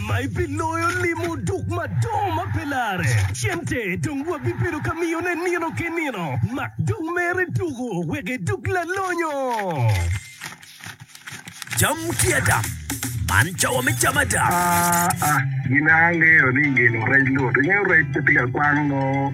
ma ebiloyo limo duk madongo ma pe lare. Cente dong wabibedo ka miyone nino ki nino, ma dong mere tuko wek eduk lalonyo. Cam ki ada. Man cawa me cam ada. Aa, gin a angeyo ni ngino rec lut. Ingeyo rec pe tika kwang nongo.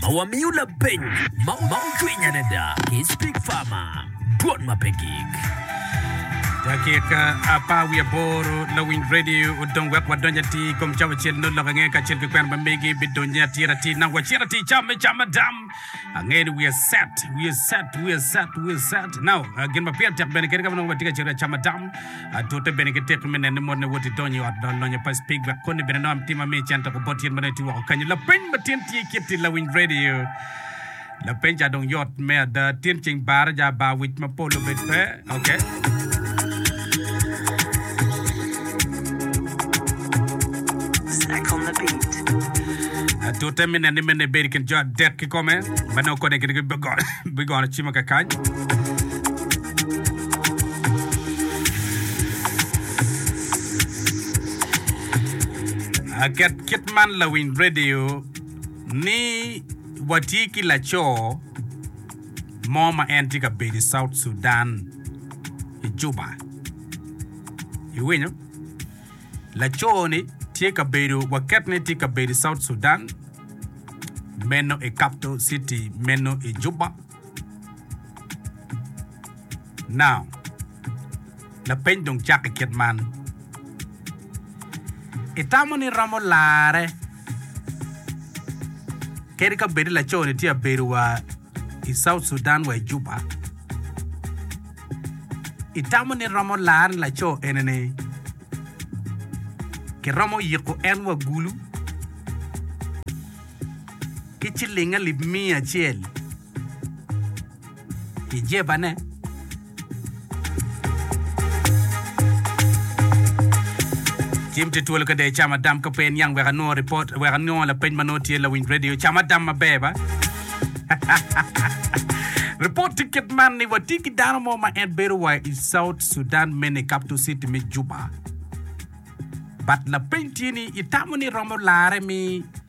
ma wamiyo lapeny ma ocwiny adada ki Speak Farmer, dwol ma pe gik. Dakika apar wiye aboro, Lawiny Radio odong wek wadonj atir i kom cawa acel nongo lok ange kacel ki kwena ma megi bidonyo atir atir nang wacit atir cam me cam ma dam. Angeyo ni wiye set, wiye set, wiye set, wiye set. Now, uh, gin ma pire tek bene kede ka ma nongo watye ka cito ka cama tam, atute bene ki teki me nene ni motne woti donyo i ot lony lonyo pa Spig wek koni bene nongo tim ma miyo cen tek obot yen ma nongo itye woko kanyo. Lapeny ma tin tye kit i lawiny radio. Lapeny ca dong yot me ada. Tin ceng barre ja bar wic ma pol obed pe. Atute me neni me nibedi i kin jo adek kikome ma nongo kodi gin bigono cimo kakany. Aket kit man lawiny radio ni watye ki laco mo ma en tye ka bedo i South Sudan i Juba. Iwinyo? Laco-ni tye ka bedo, waket ni tye ka bedo i South Sudan, meno i capital city meno i Juba. Now, lapeny dong cakke kit man, Itamo ni iromo larre kadi ka bed ni laco-ni tye ka bedo wa i South Sudan wa i Juba? Itamo ni iromo larre ni laco ene-ni kiromo yiko en wa gulu ki ciling alip miya acel? pi jebane. Tim te twolo kede cam adam ka pe iniang wek anongo ripot, wek anongo lapeny ma nongo tye lawiny redio. Cam adam maber ba? Ripot ticket man ni watye ki dano mo ma en bedo wa i South Sudan mene i capital city me Juba. But lapeny tye ni itamo ni iromo lare mi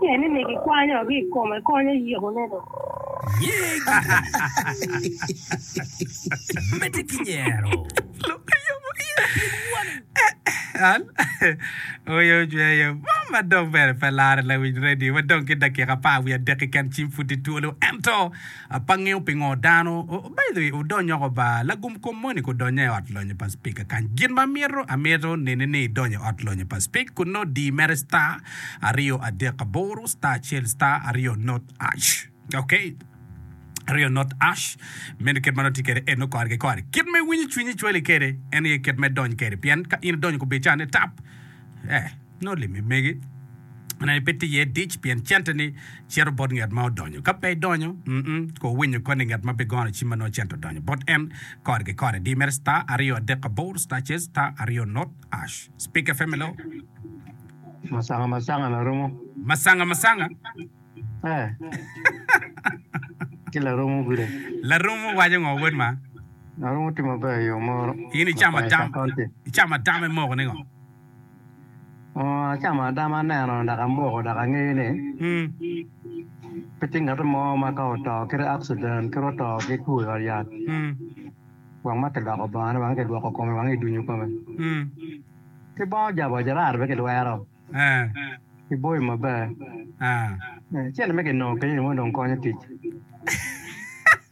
Pien ni migi kwany orii i kome, kony oyikone dong. Nyegi medde ki nyero. Lok ayomo iye pien woni. Al, Oyo ocweyo bong ma dong bene pe lare lawic radio ma dong ki dakika apar wiye adek keken cim pud tye twolo ento Apa ngeyo pingo dano obedo i odonyoko ba lagum kom moni ku donya i ot lonyo pa Speaker kany. Gin ma amito amito neni ni idonyo i ot lonyo pa Speak ku no di mere star aryo adek aboro star acel star aryo not ash ok aryo not ash meno kit ma nongo itye kede eno kore ki kore kit ma iwinyo cwinyi cwali kede eno aye kit ma idony kede pien ka in idonyo ku bicane tap eh. Nongo limi mege ne pe tye iye dic, pien centeni cito bot nget ma odonyo. Ka pe idonyo, mm-mm, kur winyo koni nget ma bigono ci ma nongo cente odonyo bot en kore ki kore. Diyo mere star aryo adek abor star cez star aryo not ash. Speaker fm hello. Masanga masanga laromo. Masanga masanga. Eh. Ki laromo gude. Laromo waco ngo wod ma? Laromo tye maber yo moro. In icamo Mapayas tam, County. icamo tam imoko ni ngo? Acamo adama aneno dok amoko dok angeyo ni pe tye ngat mo ma ka oto ki accident kadi oto ki two i odyat wang ma kiloko bongone wang kidwoko kome wang kidunyo kome ki bongo jabo ajarato pe kilwero ki boyo maber cente me ki nongo kenyo dong konyo tic.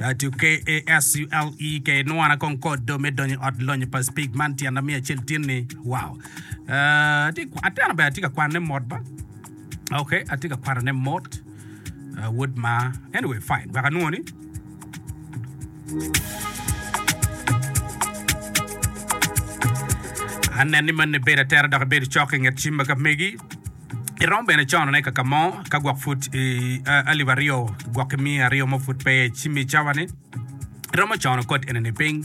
Atuke-KASULEKE Nwana kong kodo me donyo i ot lonyo pa Spig man tyen na miyo acel tin ni wow. Uh, atye ka- ateno bene atye ka kwane mot ba. Okay, atye ka kwanone mot. Uh, wod ma. Anyway, fine. Wek anwongo ni anen ni man ni bedo atera dok ibedo cok i nget cim ma ka megi. Irom bene conone kaka mo ka gwok pud i alip aryo gwok ki miya aryo mo pud pe ci mi cawa ni iromo cono kod eni ni piny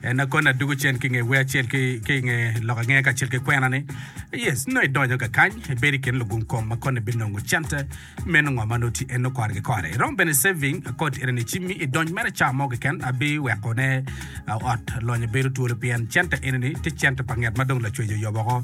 en na koni adugu cen ki nge wer acel ki ki nge lok ange ka cel ki kwena ni yes no idonyo ka kany ibedi kin lugung kom ma koni binongo cente meno ngo ma noti en no kore ki kore irom bene saving kod eni ni ci mi idonyo mere ca mo keken abi weko ne ot lonyo bedo twolo pien cente eni ni ti cente pa nget ma dong lacwejo yobo ko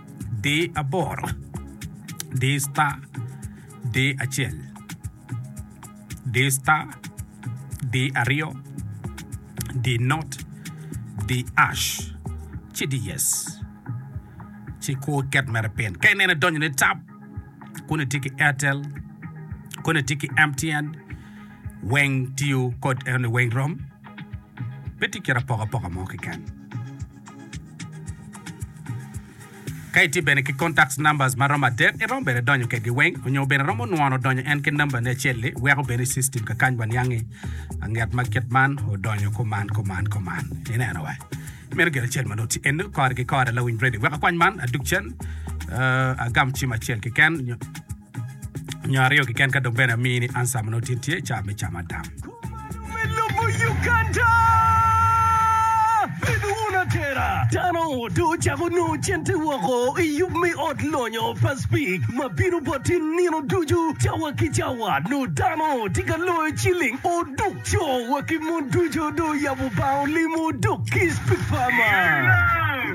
di aboro, di star, di acel, di star, di aryo, di not, di ash, ci di yes. Ci kur iket mere pin. Ka ineno idonyo ni tap, kuni tye ki Airtel, kuni tye ki MTN, weng tiyo kod eno ni weng rom. Pe tye kit apokapoka mo keken. Ka itye bene ki contacts numbers ma romo adek, iromo bene donyo kedgi weng, onyo bene romo nwono donyo en ki number ni acel-li, weko bene i system ka kany wa niangi anget ma kit man odonyo kuman kuman kuman. Ineno wa. Meno gin acel ma nongo tye eno kore ki kore lawiny radio. Wek akwany man adug cen, uh, agam cim acel keken, nyo nyo aryo kiken ka dong bene amii ni answer ma nongo tin tye i caa me cam adam. Kumalo me lobo Uganda! Bed wun atera! Dano dong ocako nongo cente woko i yub me ot lonyo pa Spik ma bino boti nino ducu cawa ki cawa. Nongo dano tye ka loyo ciling oduk. Co wa ki mon ducu dong oyabo bar olimo oduk ki Spik Farmer.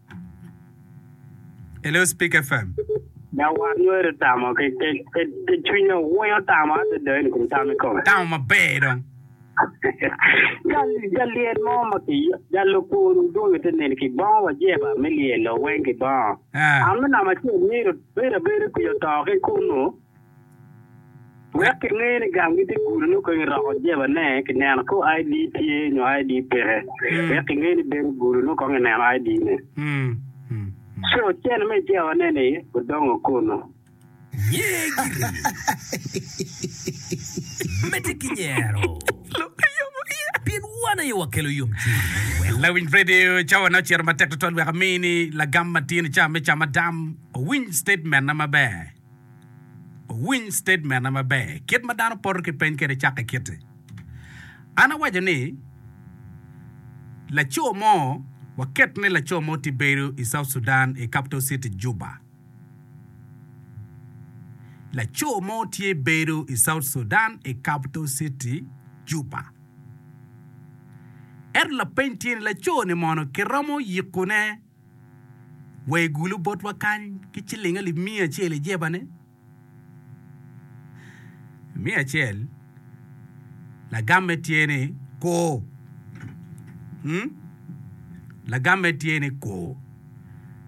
Hello Speak FM. Dok wat nyo ere tamo ke ke ke ke cwinye owoyo tamo ate deni kun tamo ikome. Tamo maber dong. Jal jal lyel mo ma ki jal lokun udong ite neni ki bongo wa jeba me lyelo weng ki bongo. Ah. Ame nama cel miro bira bira kuyo to ki kunu. Wek kingeyo ni gang gitye gudo nyo kong iroko jeba ne kineno ko ID tye nyo ID peke. Wek kingeyo ni bedo gudo nyo kong ineno ID ne. So cene me jeba ne ni odongo kono. Nyee giri. Mete ki nyero. Pien wan aye wakelo yomcwiny. Wek. Lawiny Radio, Cawa ne ocito matek tutwal wek amini lagam matin i ca me camadam owiny statement na maber. Wuwiny statement na maber. Kit ma dano poto ki peny kwede cakke kiti. An awaco ni laco mo, waket ni laco mo tye bedo i South Sudan i capital city Juba. Laco mo tye bedo i South Sudan i capital city Juba. Ento lapeny tye ni laco ni mono kiromo yikone wa i gulu botwa kany ki ciling alip miya acel i jebane. Miya acel, lagamme tye ni ko. Hmm? Lagamme tye ni ko.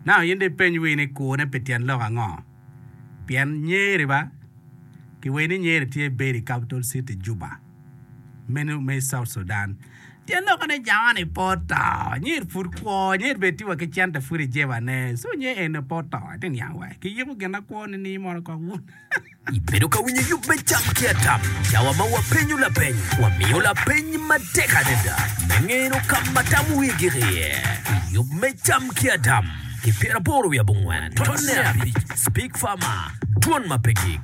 Nano in dong ipeny wii ni kone pi tyen lok ango? Pien Nyeri ba? Kiweri ni Nyeri tye bedi i capital city Juba. meno me South Sudan. Tyen lok ene Jawan i pot to. Nyer pud kwo, nyer bed tiwa ki cente pud i jeba ne. So nyer ene pot to. Ati niang wa. Ki yiko gin na kwo ni ni mono kok wun. I bedo ka winyo yub me cam ki atam, cawa ma wa penyo lapeny, wa miyo lapeny ma tek adada me ngeno ka ma tam wi gik iye. I yub me cam ki atam, ki pyeraporo wi abongwen, tone abic, Speak Farmer, Dwon ma pe gik.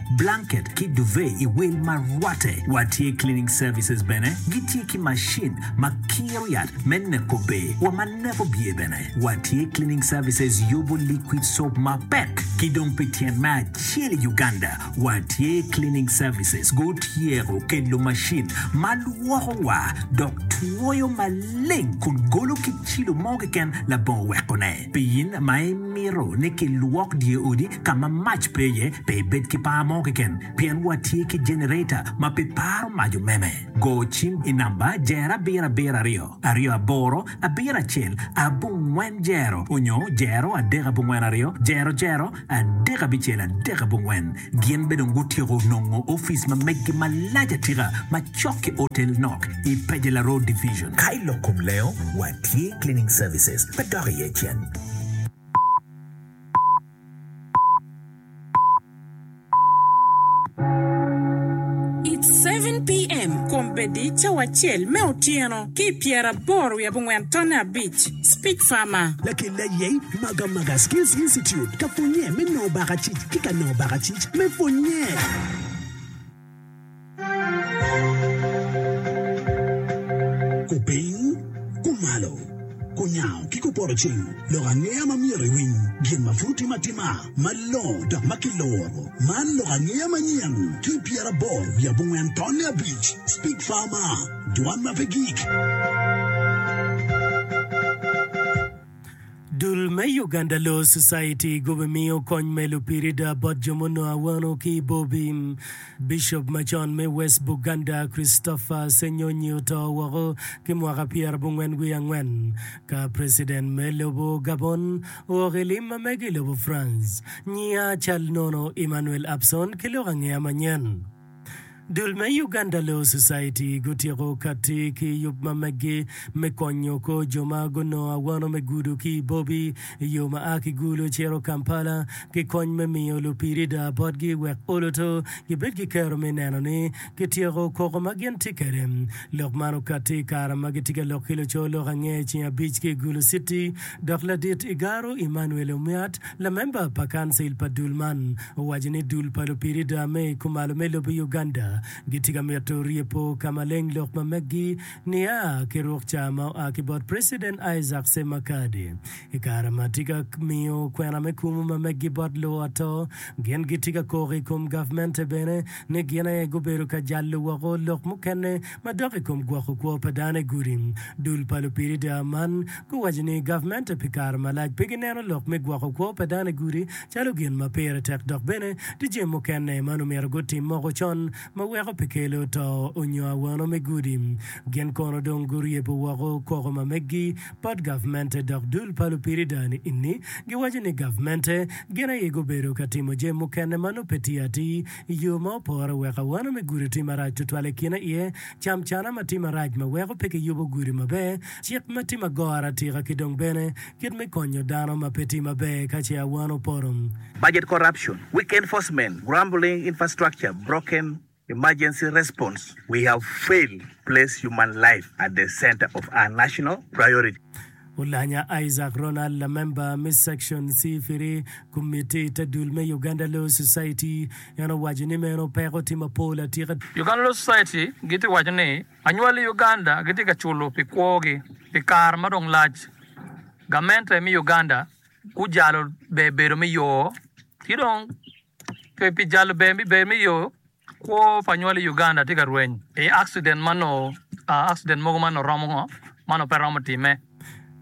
blanket ki duvet i wil ma rwatte. Wa tye cleaning services bene, gi tye ki macin ma kiro yat me neko ber wa ma neko byer bene. Wa tye cleaning services yubu liquid soap ma pek ki dong pi tyen me acel i Uganda. Wa tye cleaning services gu tyeko kelo macin ma lwoko wa dok twoyo maleng kun golo ki cilo mo keken labongo weko ne. Pien ma imito ni kilwok dye odi ka ma mac pe iye, pe ibed ki par mo keken, pien watye ki jenereta ma pe paro mac omeme. Go cim i namba jero abiro abiro aryo, aryo aboro, abiro acel, abongwen jero, onyo jero adek abongwen aryo, jero jero, Adek abicel adek abongwen gin be dong gutyeko nongo ofice ma meggi malac atika macok ki otel nok i Pejela Road Division. Ka i lok kom lengo, watye cleaning services me dok iye cen. It's seven PM, Kombeddi cawa acel me otyeno ki pyeraboro wiye abongwen tonne abic. Speak Farmer. Lakel aye Maga Maga Skills Institute ka pwonnye me nongo bakacic ki ka nongo bakacic me pwonnye. Kupiny, kumalo, kunyango ki kuporo cing lok angeya ma myero iwiny gin ma pud tim atima malongo dok ma kiloro. Man lok angeya manyen ki pyerabor wiye abongwen tonne abic. Speak Farmer. Dwan ma pe gik. Dul me Uganda Law Society gubimiyo kony me lupirida bot jo munongo awano ki i Bobi. Bicop macon me West Buganda, Christopher Ssenyonyi oto woko ki mwaka pyerabongwen wiye angwen ka preciden me lobo Gabon ook i lim ma mege i lobo France. Nyiya cal nono Emmanuel Abson ki lok angeya manyen. Dul me Uganda Law Society gutyeko katti ki yub ma meggi me konyo kor jo ma gunongo awano me gudo ki i Bobi i yo ma a ki Gulu cito Kampala ki kony me miyo lupirida botgi wek oluto gibed ki kero me neno ni kityeko koko ma gin tye kwede. Lok man okatti i kare ma gitye ka lok ki lucoo lok angec ceng abic ki i Gulu City dok ladit Igaro Emmanuel Omiat Lamemba pa kancil pa dul man owaco ni dul pa lupirida me i kumalo me lobo Uganda gitye ka mito rye po ka maleng lok ma meggi nia ki ruk ca ma oa ki bot President Isaac Ssemakade i kare ma tye ka miyo kwena me kumu ma meggi bot luwo ato. Gin gitye ka koko i kom gavmente bene ni gin aye gubedo ka jalo woko lok mukene Ma dok i kom gwoko kwo pa dano i gudi, dul pa lupirida man guwaco ni gavmente pi kare malac pe gineno lok me gwoko kwo pa dano i gudi calo gin ma pire tek dok bene tye jami mukene ma nongo myero gutim moko con ma weko pe kelo to onyo awano me gudi. Gin kono dong guryebo woko koko ma meggi bot gavmente dok dul pa lupirida ni giwaco ni gavmente gin aye gubedo ka timo jami mukene ma nongo pe tye atir I yo ma opore, wek awano me gudo tye marac tutwal i kine iye, camcana ma tye marac ma weko pe kiyubo gudo maber, cik ma tye ma goro atika ki dong bene kit me konyo dano ma pe tye maber ka ce awano poto. Budget corruption, weak enforcement, grumbling infrastructure, broken emergency response, we have failed place human life at the center of our national priority. Olanya Isaac Ronald lamemba me Section C-Firi Komitti te dul me Uganda Law Society en owaco ni meno peko tye mapol atika. Uganda Law Society gitye waco ni anywali i Uganda gitye ka culo pi kwogi pi kare ma dong lac. Gamente me Uganda gujalo ber bedo me yoo ki dong. Pe pi jalo ber me ber me yo, kwo pa nywal i Uganda tye ka rweny i accident ma noo accident mogo ma noo romo ngo ma noo pe romo time.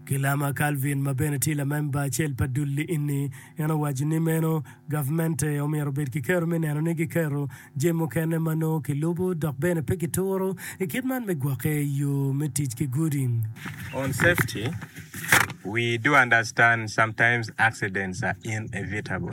Kilama Calvin ma bene tye lamemba acel pa dul-li enni, en owaco ni meno gavmente omyero obed ki kero me neno ni giketo jemi mukene ma noo kilubo dok bene pe kituro i kit man me gwokke i yo me tic ki gudi. On safety, we do understand sometimes accidents are inevitable.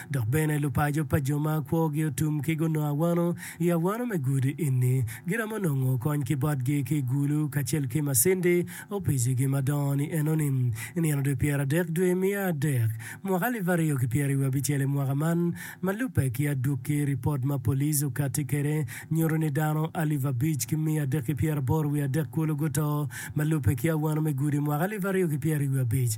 Dok bene lupaco pa jo ma kwogi otum ki gunongo awano i awano me gudo enni giromo nongo kony ki botgi ki i gulu kacel ki macindi opicigi madongo ni enoni. I nino dwe pyera adek dwe miya adek mwaka alip aryo ki pyera i wiye abicel i mwaka man ma lubbe ki adwoki ripot ma police okati kede nyuto ni dano alip abic ki miya adek ki pyera aboro wiye adek kulu guto ma lubbe ki awano me gudo i mwaka alip aryo ki pyera i wiye abic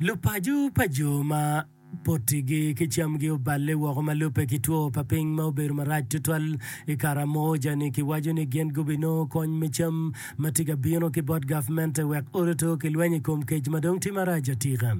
Lupaco pa jo ma potigi ki camgi oballe woko ma lubbe ki two pa piny ma obedo marac tutwal i Karamoja-ni giwaco ni gin gubinongo kony me cam ma tye ka bino ki bot gavmente wek ot oto ki lweny i kom kec ma dong tye marac atika.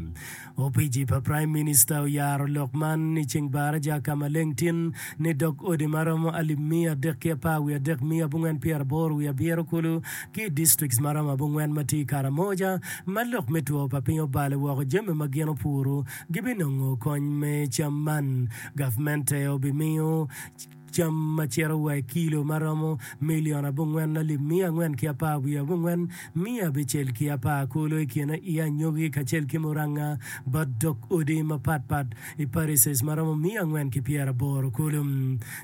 Opici pa praim minista oyaro lok man i ceng baraja ka maleng tin ni dog odi ma romo alip miya adek ki apar wiye adek miya abongwen pyeraboro wiye abiro kulu ki i distrikts maromo abongwen ma tye i Karamoja ma lok me two pa piny obalo woko jami ma gin opuru gibinongo kony me cam man gavmente obimiyo cam ma cito wa i kilo ma romo milion abongwen alip miya angwen ki apar wiye abongwen miya abicel ki apar kulu i kine i anyogi kacel ki muranga bot dog odi mapatpat i parishes ma romo miya angwen ki pyeraboro kulu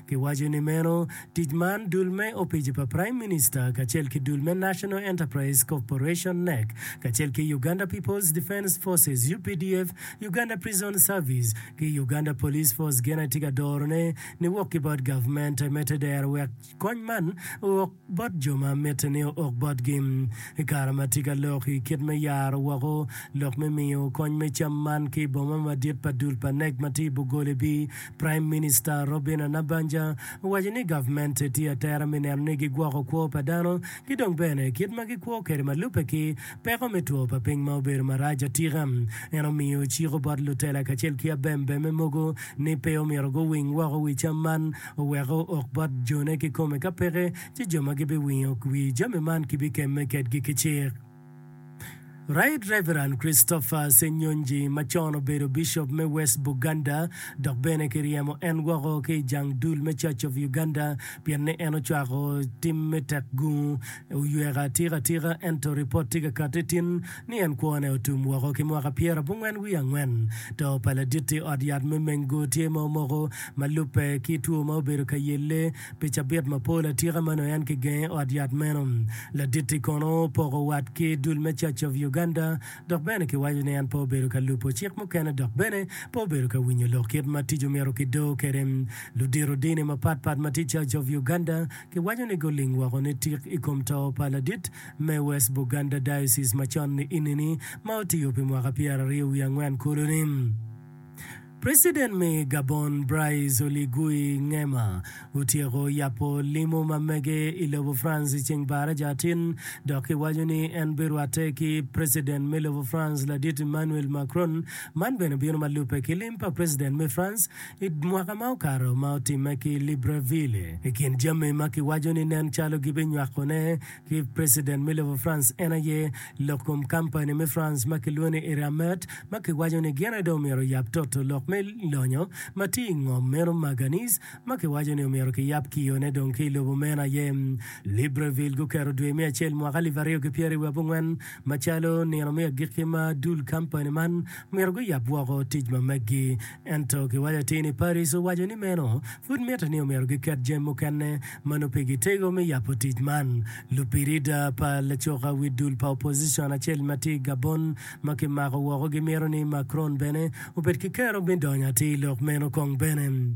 kiwaco ni meno Tic man dul me opici pa Prime Minister kacel ki dul me National Enterprise Corporation, NEC, kacel ki Uganda People's Defence Forces, updf, Uganda Prison Service, ki Uganda Police Force gin aye tye ka dorone niwok ki bot gavment me te dero wek kony man ook bot jo ma mitte ni ook botgi i kare ma tye ka lok i kit me yaro woko lok me miyo kony me cam man ki i boma madit pa dul pa NEC ma tye i Bugole bi Praim Minista Robina Nabbanja owaco ni gavmente tye atera me neno ni gigwoko kwo pa dano ki dong bene kit ma gikwo kwede ma lubbe ki peko me two pa piny ma obedo marac atika. En omiyo ciko bot lutela kacel ki abembemme mogo ni pe omyero guwiny woko wi cam man oweko ok bot jone kikome ka peke ci jo ma gibiwinyo wi jami man kibikemme kedgi ki cik. Right Reverend Christopher Ssenyonji ma con obedo Bishop me West Buganda dok bene ki ryemo en woko ki i jang dul me Church of Uganda pien ni en ocwako tim me tek gungu oyweka atika atika ento ripot tye ka kati tin ni en kwo ne otum woko ki mwaka pyera abongwen wiye angwen to pa laditti ot yat me Mengu tye ma omoko ma lubbe ki two ma obedo ka yelle Pi cabit mapol atika ma nongo en kigenge i ot yat meno, Laditti kono opoko wat ki dul me Church of Uganda dok bene kiwaco ni en pe obedo ka lubo cik mukene dok bene pe obedo ka winyo lok kit ma tic omyero kido kwede. Ludito dini mapatpat ma tye i Church of Uganda kiwaco ni guling woko ni tik i kom to pa ladit me West Buganda Diocese macon-ni ini ni ma otiyo pi mwaka pyeraryo wiye angwen kulu ni, President me Gabon Brice Oligui Nguema otyeko yabo limo ma mege i lobo France i ceng Baraja atin dok ki waco ni en bi rwatte ki President me lobo France ladit Emmanuel Macron, man bene bino ma lubbe ki lim pa President me France i mwaka ma okato ma otimme ki Libreville. I kin jami ma ki waco ni nen calo gi bi nywako ne ki President me lobo France en aye lok kom kampani me France ma kilwongo ni Eramet ma kiwaco ni gin aye dong omyero oyab toto lok me lonyo ma tye i ngom meno Maganese ma kiwaco ni omyero kiyab ki yone dong ki i lobo meno aye Libreville guketo dwe me acel mwaka alip aryo ki pyeraryo wiye abongwen macalo nino me agikki ma dul kampani man myero guyab woko tic ma meggi Ento kiwaco atir ni Paraiso waco ni meno pud mitte ni omyero giket jami mukene ma nongo pigi tego me yabo tic man. Lubirida pa lacoka wi dul pa opozicon acel ma tye i Gabon ma kimako woko gimito ni Macron bene obed ki kero me donyo atir lok meno kong bene.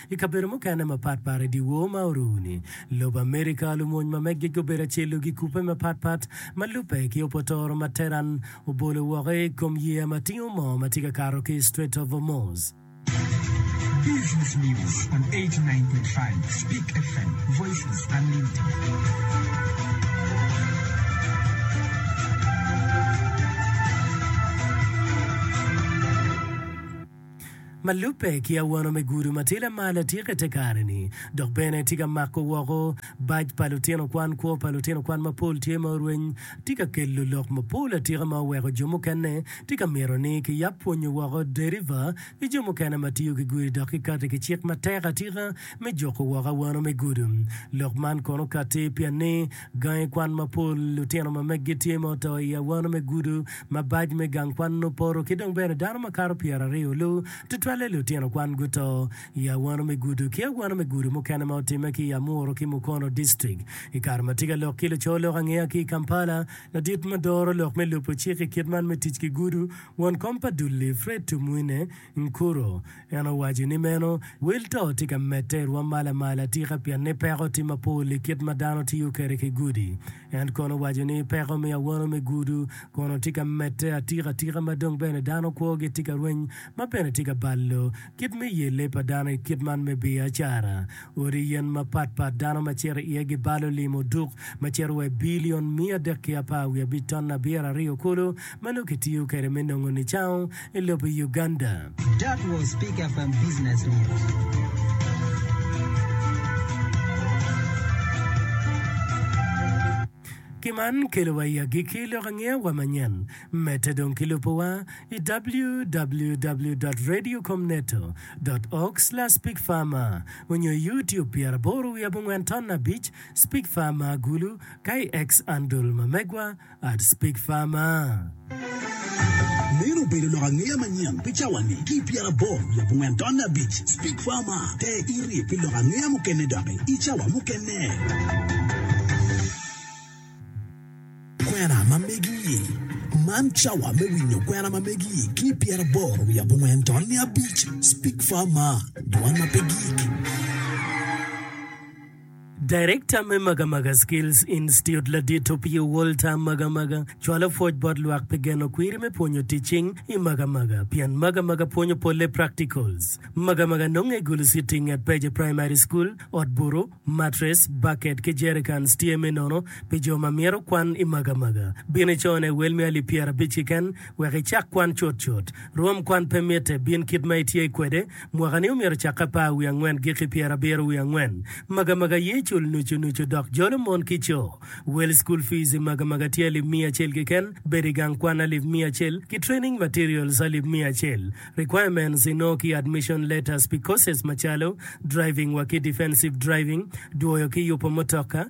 I kabedo mukene mapat pat i dyewor ma oru-ni, lobo Amerika, lumony ma meggi gubedo acel-lu gikubbe mapat pat ma lubbe ki opotoro ma Tehran obolo woko i kom yeya ma tingo moo ma tye ka kato ki i Strait of Hormuz. ma lubbe ki awano me gudo ma tye lamal atika i te kare-ni, dok bene tye ka mako woko bac pa lutino kwan. Kwo pa lutino kwan mapol tye ma orweny tye ka kelo lok mapol atika ma oweko jo mukene tye ka mito ni kiyab pwonyo woko deriva ki jo mukene ma tiyo ki gudi dok kikati ki cik matek atika me juko woko awano me gudo. Lok man kono kati pien ni Gangi kwan mapol, lutino ma meggi tye ma oto i awano me gudo, mabac me gang kwan nongo poto, ki dong bene dano makato pyeraryo lu, tutwalle lutino kwan guto i awano me gudo ki awano me gudo mukene ma otimme ki i Amuru ki Mukono District. I kare ma tye ka lok ki luco lok angeya ki i Kampala, ladit ma doro lok me lubo cik i kit man me tic ki gudo, won kom pa dul-li, Fred Tumwine, Nkuro. En owaco ni meno wil to tye ka medde i rwom mal amal atika pien ni peko tye mapol i kit ma dano tiyo kwede ki gudu. En kono owaco ni peko me awono me gudu kono tye ka medde atika atika ma dong bene dano kwogi tye ka rweny ma bene tye ka balo kit me yelle pa dano i kit man me biacara. Odi yen mapat pat dano ma cito iye gibalo lim oduk ma cito wa i bilion miya adek ki apar wiye abic ton abiro aryo kulu ma nongo kitiyo kwede me nongo nicango i lobo Uganda. Ki man kelo wa i agikki lok angeya wa manyen. Medde dong ki lubo wa i www.radiocomneto. Org/speakfarmer onyo i YouTube pyera aboro wiye abongwen ton abic, Speakfarmer Agulu, ka i X andul ma megwa. I'd speak far ma. Meno obedo lok angeya manyen pi cawa-ni. Ki i pyeraboro leb ongwen tonne abic, Speak Far Ma! te iri pi lok angeya mukene doki i cawa mukene. Kwena ma Megi-i, Man cawa me winyo kwena ma Megi-i ki i pyeraboro leb ongwen tonne abic, Speak Far Ma! dwan ma pe gik. Darekta me Magamaga Skills Institute ladit opye Walter Magamaga cwalo pwoc bot lwak pi geno kwiri me pwonyo tic cing i Magamaga pien Magamaga pwonyo polle practicals. Magamaga nonge i Gulu City i nget Peje Primary School. Ot buru, matres, baket ki jericans tye me nono pi jo ma myero kwan i Magamaga. Bin icone wel me alip pyerabic kiken wek icak kwan cutcut. Rwom kwan pe mitte, bin kit ma itye kwede. Mwaka-ni omyero ocak apar wiye angwen giki pyerabiro wiye angwen. Magamaga aye cul nucu nucu dok jolo mon ki co. Wel School Fees i magamaga tye alip miya acel keken, bedo i gang kwan alip miya acel, ki Training Materials alip miya acel. Requirements inongo ki Admission Letters pi courses macalo, Driving wa ki Defensive Driving, Dwoyo ki yupo mutoka,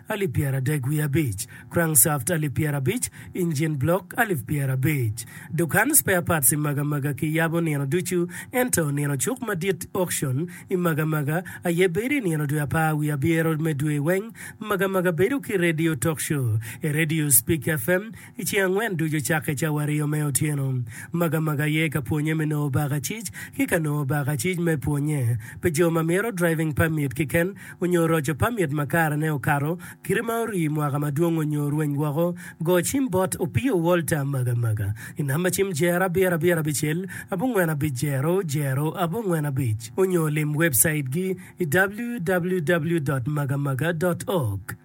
alip pyeraadek wiye abic, crankshaft alip pyerabic, engine block alip pyerabic. Dukan spare parts i Magamaga ki yabo nino ducu ento nino cuk madit auction i Magamaga aye bedo i nino dwe apar wiye abyero me dwe weng Magamaga bedo ki radio talk show, e radio speak FM, I ceng angwen ducu cakke cawario me otyeno, Magamaga aye ka pwonye me nongo bakacic ki ka nongo bakacic me pwonye pi jo ma myero driving permit kiken onyo roco permit ma kare ne okato kite ma orii mwaka madwong onyo rweny woko Go cim bot Opio Walter Magamaga I namba cim Jer abiro abiro abicel abongwen abic jero jero abongwen abic onyo lim website gi I www.magamaga.org.